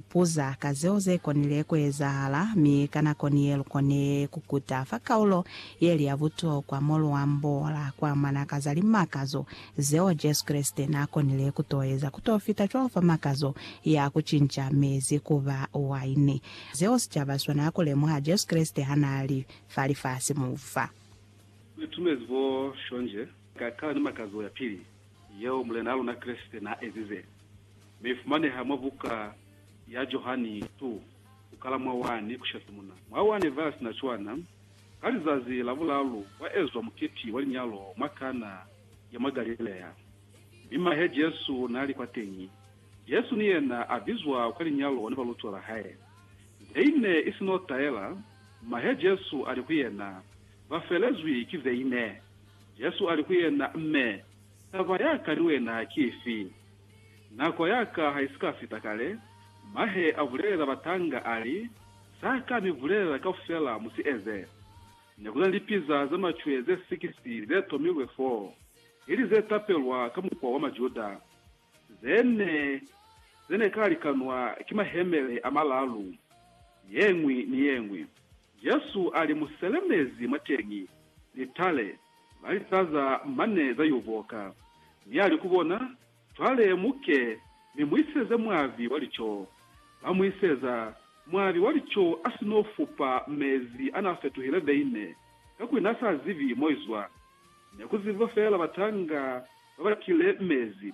Buza ka zeo ze konile ku ezahala, mi ka nako ni ye lu kone ku kuta fa kaulo ye li ya butokwa mo lu ambola ku amana ka za limakazo zeo Jesu Kreste n'a konile ku t'o eza ku t'o fita cwalo fa makazo ya ku cinca mezi ku ba waini, zeo sicaba si swanela ku lemuha Jesu Kreste ha n'a li fa lifasi mu fa. Ku itumezi bo shonje ka kala ni makazo ya pili yeo Mulena wa luna Kreste n'a ezize. Ne i fumaneha mwa buka ya Johani ii, ku kala mwa 1 ku isha simuna mwa 1. Ba si na cwana, ka lizazi la bulaalu kwa ezwa muketi wa linyalo mwa Kana ya mwa Galilea, mi mahe Jesu n'a li kwateñi. Jesu ni yena a bizwa kwa linyalo ni balutiwa ba hae. Veine i si n'o taela, mahe Jesu a li ku yena, Ba felezwi ki veine. Jesu a li ku yena, Mme, taba ya ka ni wena ki ifi? Nako ya ka ha i si ka fita kale, mahe a bulelela batanga a li, Sa ka mi bulelela kaufela mu si eze. Ne ku na ni lipiza ze macwe ze sikisi ze tomilwe fo, ili ze tapelwa ka mukwa wa Majuda, ze ne, ze ne ka likanwa ki mahemele a malalu, ye ñwi ni ye ñwi. Jesu a li mu selemezi mwateñi, litale. Ba lisaza mane za y'o boka, mi ali ku bona, Cwale mu ke, mi mu iseze mwavi wa lico. Ba mu iseza, mwavi wa lico a si n'o fupa mezi a n'a fetuhile veine, kakuli n'a sa zibi mo i zwa. Ne ku zibiwa feela batanga ba ba kile mezi.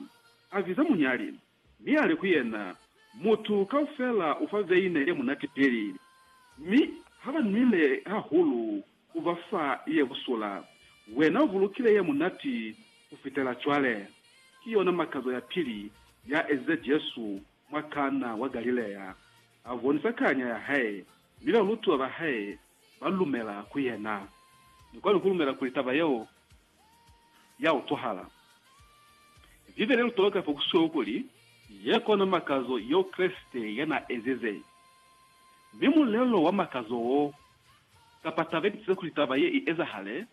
A biza munyali, Mi ali ku yena, Mutu kaufela ufa veine ye munati pili, mi ha ba nwile hahulu u ba fa ye busula. Wena u bulukile ye munati ku fitela cwale. Ki yona makazo ya pili ya ezize Jesu mwa Kana wa Galilea. A bonisa kanya ya hae, mi balutiwa ba hae ba lumela ku yena. Ni kwani ku lumela kuli taba yeo ya utwahala. Bibele lu toloka fa kusweu kuli, Ye kona makazo yeo Kreste ya n'a ezize. Mi mulelo wa makazo wo, kapa taba ye tisize kuli taba ye i ezahale,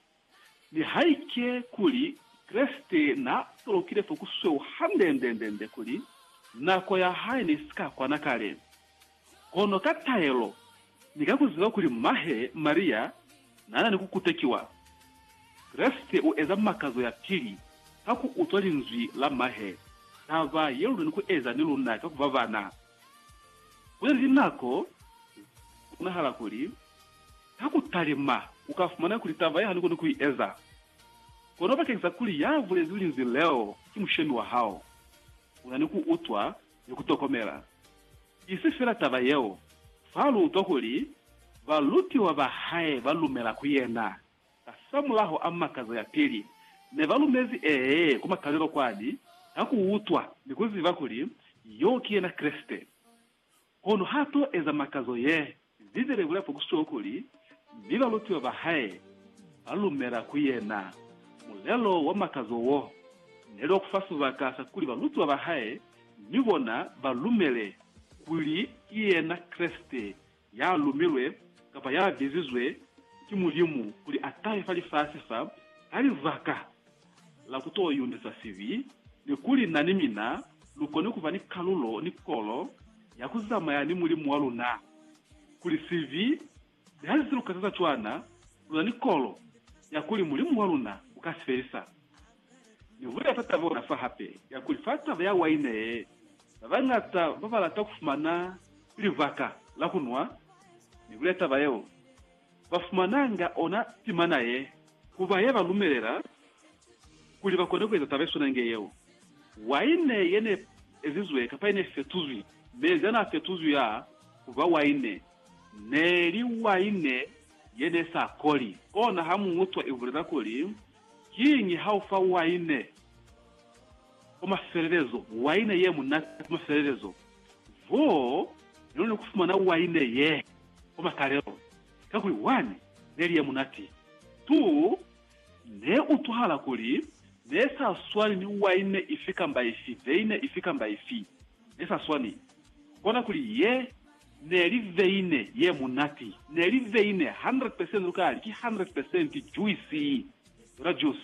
nihaike kuli Kreste n'a tolokile fa kusweu hande-nde-nde-nde kuli nako ya hae ne si ka kwana kale, Kono ka taelo, ni ka ku ziba kuli mahe Maria n'a na ni ku kutekiwa, Kreste u eza makazo ya pili ka ku utwa linzwi la mahe, taba ye lu na ni ku eza ni luna ka ku ba bana. Ku na ni linako ze bonahala kuli ka ku talima u ka fumana kuli taba ye hanukunu ku i eza. Kono bakeñisa kuli ya bulezi linzwi leo ki mushemi wa hao, u na ni ku utwa ni ku tokomela. Isi fela taba yeo, fa lu utwa kuli balutiwa ba hae ba lumela ku yena. Kasamulaho a makazo ya pili, ne ba lumezi ee ku makalelo kwani ka ku utwa ni ku ziba kuli yo ki yena Kreste. Kono ha to eza makazo ye Bibele ibulela fa ku sitwa kuli, Mi balutiwa ba hae ba lumela ku yena. Mulelo wa makazo wo ne li wa ku fa sibaka sa kuli balutiwa ba hae ni bona ba lumele kuli ki yena Kreste ya lumilwe kapa ya bizizwe ki Mulimu kuli a tahe fa lifasi fa ka libaka la ku to yundisa sibi, ni kuli na ni mina lu koni ku ba ni kalulo ni kolo ya ku zamaya ni Mulimu wa luna. Kuli sibi ni ha si lu kataza cwana, lu na ni kolo ya kuli Mulimu wa luna u ka si felisa. Ni bulela fa taba ona fa hape ya kuli fa taba ya waine ye, ba bañata ba ba lata ku fumana libaka la ku nwa. Ni bulela taba yeo. ba fumananga ona timana ye, ku ba ye ba lumelela kuli ba kone ku eza taba ye swana inge yeo. Waine ye ne ezizwe kapa ye ne fetuzwi, mezi a n'a fetuzwi a ku ba waine, ne li waine ye ne sa koli. Ona ha mu utwa i bulela kuli, Kiñi ha u fa waine kwa mafelelezo, waine ye munati kwa mafelelezo? Bo ne luli kufumana waine ye kwa makalelo, kakuli wani neli ye munati. Tu ne utwahala kuli ne sa swani ni waine ifi kamba ifi, veine ifi kamba ifi. Ne sa swani. Kona kuli ye neli veine ye munati. Neli veine 100 percent lukali ki 100 percent juisi, yona juice.